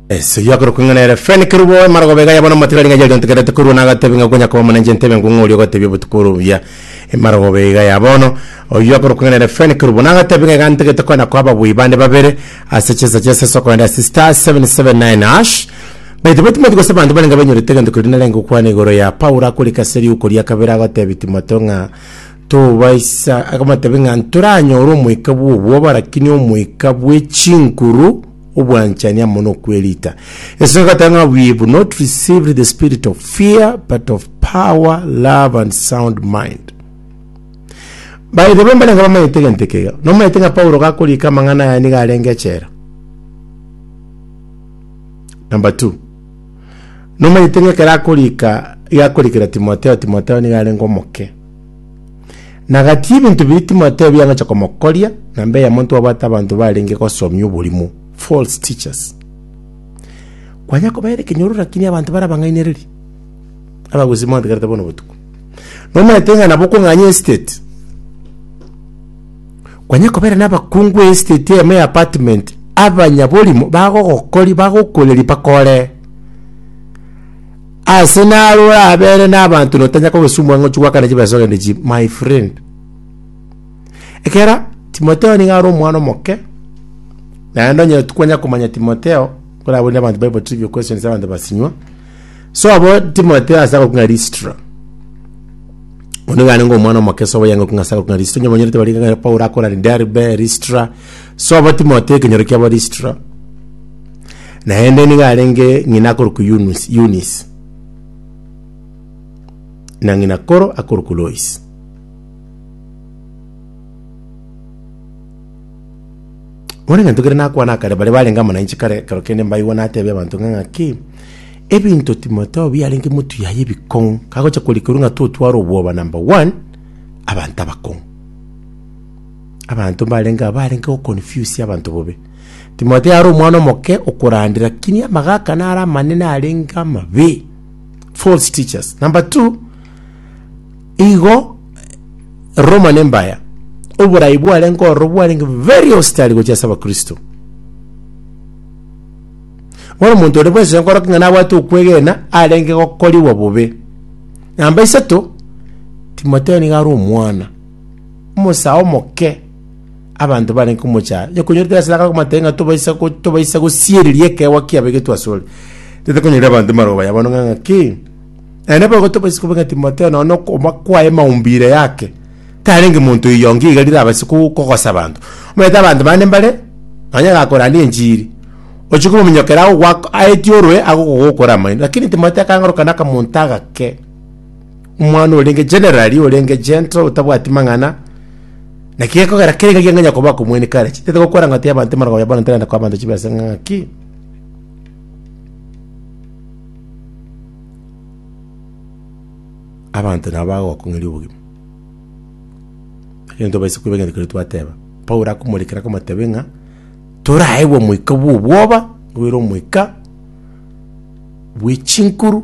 Ese yo akorokwa ng'a nere Fren Kerubo emara gobega yabona amatigari ng'a yayontekerete korwa na agatebe ng'a konya koba omonenche entebe ngwo ng'ori ogotebia obotuko ore obuya emara gobega ya bono oyio akorokwa ng'a nere Fren Kerubo na agatebe ng'a egantegete konya koa ababui bande babere ase chinsa chia seso kogenda ase star 779 hash baito be Timothy gose abanto barenge banyorete egento keria narenge gokwana igoro ya Paulo akorika ase riuko ria kabere agotebi Timotheo ng'a Tobaisa akamotebia ng'a ntoranyore omoika bw'obwoba, lakini omoika bwe chinkuru obwanchani amo nokwerita. Esonga egateba ng'a we have not received the spirit of fear but of power, love and sound mind. Baito bambarenge bamanyete egento ekeiga. Nomanyete ng'a Paulo gakoriika amang'ana aya nigo arenge echela. Number two, nomanyete ng'a ekero akoriika iga akorikera Timotheo, Timotheo nigo arenge omoke. Na gati y'ebinto biri timotebi biangocha komokoria, na mbe eyemo twabwate abanto barenge gosomia oborimo, false teachers. Kwanya kobaere ekenyoro lakini abanto bara bang'ainereria. Abagusi mwantegerete bono botuko. Nomanyete ng'a nabo kong'anya estate. Kwanya kobaere na abakungu estate eyemo ya apartment, abanyaborimo bagogokori bagokoreria bakore. Aase naro orabeere n'abanto na otanye kogosumwa ng'a ochia goakana chibaisa ogende chi my friend. Ekero Timotheo nigo are omwana omoke, naende onye tikwenya komanya Timotheo, nkoraborie abanto Bible trivia questions abanto basinywa. Sobo Timotheo ase agokwa ng'a Listra. Oyo nigo arenge omwana omoke sobo yanga okwa ng'a ase agokwa ng'a Listra. Onye omonyerete barenge ng'a Paulo akorari Derbe, Listra. Sobo Timotheo ekenyoro kiabo Listra. Naende nigo arenge ng'ina akorokwa Yunus- Yunis, na ng'ina koro akorokwa Lois. Bono egento keria nakwana akare, baria barenge amo nainche kare ekero kende mbaigwa natebia abanto ng'a ng'aki, ebinto Timotheo biarenge motuyaye ebikong'u, kagocha korikorwa ng'a totware obwoba number one, abanto abakong'u. Abanto mbarenge aba barenge goconfuse abanto bobe. Timotheo are omwana omoke okorandera, lakini amagaka nare amanene arenge amabe, false teachers. Number two, igo Roma nembaya, oborai bwarenge ororo bwarenge very hostile gochia ase abakristo. Bono omonto ore bwensi onkoroka ng'a nabwate okwegena arenge gokorigwa bobe. Namba isato, Timotheo nigo are omwana, omosae omoke, Abanto barenge komocha aa, onye konyorete ase agakora komataiyo ng'a tobaisa go- tobaisa gosiereria ekeegwa kiabo ege twasore, tete konyeria abanto mbarogo baya bono ng'a ng'aki. Naende boigo tobaisa koba ng'a Timotheo nonye na okobua kwaye maumbire yake, tarenge monto oyonge iga rire abase ko- kogosa abanto. Omanyete abanto bande mbare, nonye agakorande enchiri, ochia komonyokera agogoak aetie orwe agokogokora amaino. Lakini Timotheo akang'oroka na akamonto agake. Omwana orenge generally, orenge gentle, otabwati mang'ana, naki gekogera kere ngaki ang'anya koba akomoini kare. Chitete gokora ng'a ati abanto emarwagoba ya bono nterenda koa abanto chibe ase ng'aki. Abanto nabo bagogokong'eria obogima. Egento tobaisa koiba egento keria twateba. Paulo akomorekera akamotebia ng'a, toraegwe omoika bw'obwoba, obeire omoika bwe chinkuru,